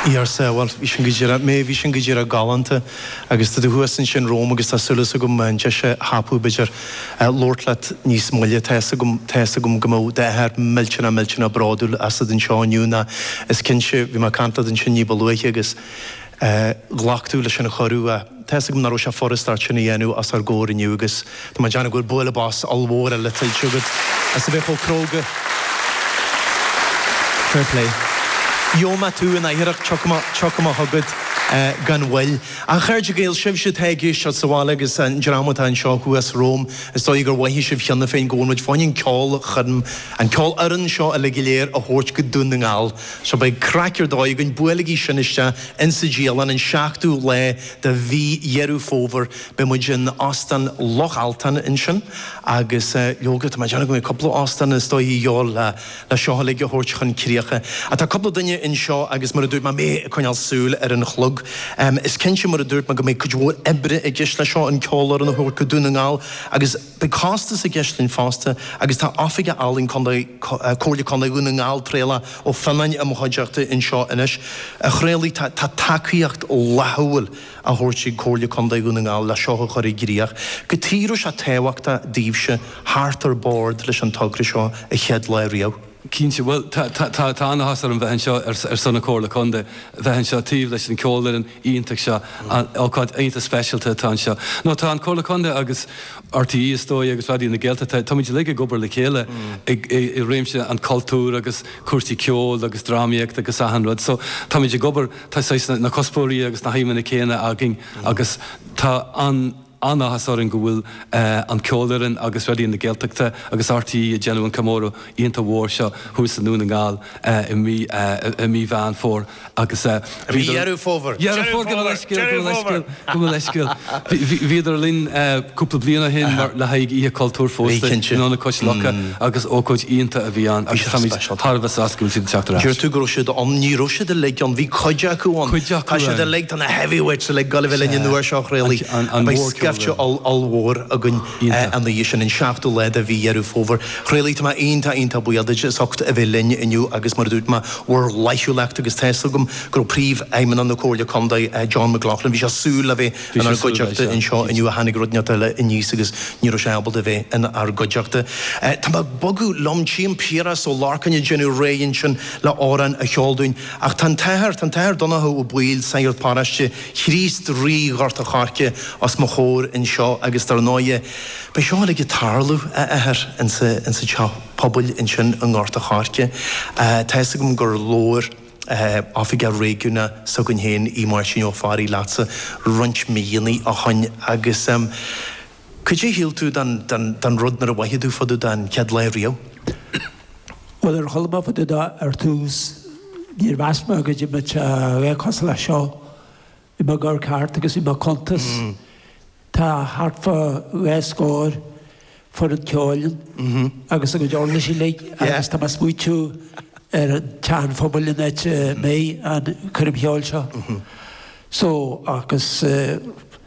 í ar saol. Bhuel, bhí sin go díreach, bhí sin go díreach galánta agus tá tú thuas ansin romham agus tá súil agam an deis a thapú b'fhéidir labhairt leat níos moille. Tá fhios agam, tá fhios agam go mbeadh d'athair millteanach millteanach bródúil asat anseo inniu nó is cinnte, bhí mé ag caint leat ansin ní ba luaithe agus ghlac tú leis an chuireadh? Tá fhios agam nach raibh sé furast ort sin a dhéanamh os ár gcomhair inniu agus tá mé ag déanamh go bhfuil bualadh bos ollmhór eile tuillte agat as a bheith chomh cróga. Fair play. Gheobhaidh mé tú in atharrach, tiocfaidh mé chugat gan mhoill. A chairde Gael, sibhse atá ag éisteacht sa bhaile agus an dream atá anseo thuas romham, is dóigh gur mhothaigh sibh cheana féin go bhfuil muid fáin an ceolchoirm, an ceolfhoireann seo uilig go léir a thabhairt go Dún na nGall. So beidh craic ar dóigh againn. Buailigí sin isteach in sa dialann, an 7ú lá de mhí Dheireadh Fómhair beidh muid in Óstán Loch Altan ansin agus leoga tá mé ag déanamh go mbeidh cúpla óstán is dóigh de dhíobháil le seo uilig a thabhairt chun críocha. Tá cúpla duine anseo agus mar a dúirt mé mé ag coinneáil súil ar an chlog. Is cinnte mar a dúirt mé go mbeidh cuid mhór oibre i gceist le seo, an ceolfhoireann a thabhairt go Dún na nGall agus. Beidh costas i gceist linn fosta agus tá oifigeach ealaíon Comhairle Contae Dhún na nGall, Traolach Ó Fionnáin i mo chuideachta anseo anois, a Thraolaigh tá tacaíocht fhlaithiúil á thabhairt ag Comhairle Contae Dhún na nGall le seo a chur i gcríoch. Cad chuige a raibh sé tábhachtach daoibhse theacht ar bord leis an togra seo an chéad lá riamh. Cinnte, bhuel, tá an-áthas orm bheith anseo ar son na Comhairle Contae, bheith anseo taobh leis an ceolfhoireann iontach seo, ócáid iontach speisialta atá anseo. Nó tá an Comhairle Contae agus RTÉ is dóigh agus Raidió na Gaeltachta, táimid uilig ag obair le chéile i réimse an chultúir agus cúrsaí ceoil agus drámaíocht agus achan rud so táimid ag obair, tá saghas na cuspóirí agus na haidhmeanna céanna againn agus tá an. An-áthas orainn go bhfuil an Ceolfhoireann agus Raidió na Gaeltachta agus RTÉ ag déanamh an comóradh iontach mhór seo thuas i nDún na nGall i mí Mheán Fómhair agus I mí Dheireadh Fómhair! Dheireadh Fómhair! Gabh mo leithscéal, gabh mo leithscéal, gabh mo leithscéal. Bhíodar linn cúpla bliain ó shin le haghaidh Oíche Cultúir fosta in ionad Cois Locha agus ócáid iontach a bhí ann agus táimid thar a bheith sásta go bhfuil siad ag teacht ar ais. Deir tú go raibh siad ann, ní raibh siad uilig ann, bhí cuid acu ann, tá siad uilig. na heavyweights uilig, ag gabháil a bheith linn an uair seo a Thraolaigh, beidh scaifte ollmhór againn an oíche sin, an 7ú lá de mhí Dheireadh Fómhair. A Thraolaigh, tá mé iontach, iontach buíoch duit as ucht a bheith linn inniu agus mar a dúirt mé, bhur bhflaithiúlacht agus tá fhios agam go raibh Príomhfheidhmeannach na Comhairle Contae, John McLaughlin, bhí sé súil le bheith inár gcuideachta anseo inniu ach tháinig rud inteacht eile aníos agus ní raibh sé ábalta bheith inár gcuideachta. Tá mé ag bogadh liom, tchím Piaras Ó Lorcáin ag déanamh réidh ansin le amhrán a cheol dúinn. Ach tá an t-athair, tá an t-Athair Donnchadh Ó Baoill, Sagart Paráiste Chríost Rí Ghort a' Choirce os mo chomhair anseo agus dar ndóighe beidh seo uilig ag tarlú, a Athair, insa, insa teach pobail ansin i nGort a' Choirce. Tá fhios agam gur labhair eh, Oifigeach Réigiúnach s'againn féin, Aodh Máirtín Ó Fearraigh leatsa roinnt míonnaí ó shoin agus ehm, Cad é a shíl tú den rud nuair a mhoithigh tú fá dtaobh de an chéad lá riamh? Bhuel, nuair a chuala mé fá dtaobh dó ar tús, níor mheas mé go dtí mise a bheith cosúil leis seo. Bhí mé ag amharc thart agus bhí mé ag cuntas. Tá thart fá dhá scór foireann ceoil agus a gcuid uirlisí uilig agus tá mé ag smaointiú ar an teach pobail an áit a mbeidh, an coirm cheoil seo. So, agus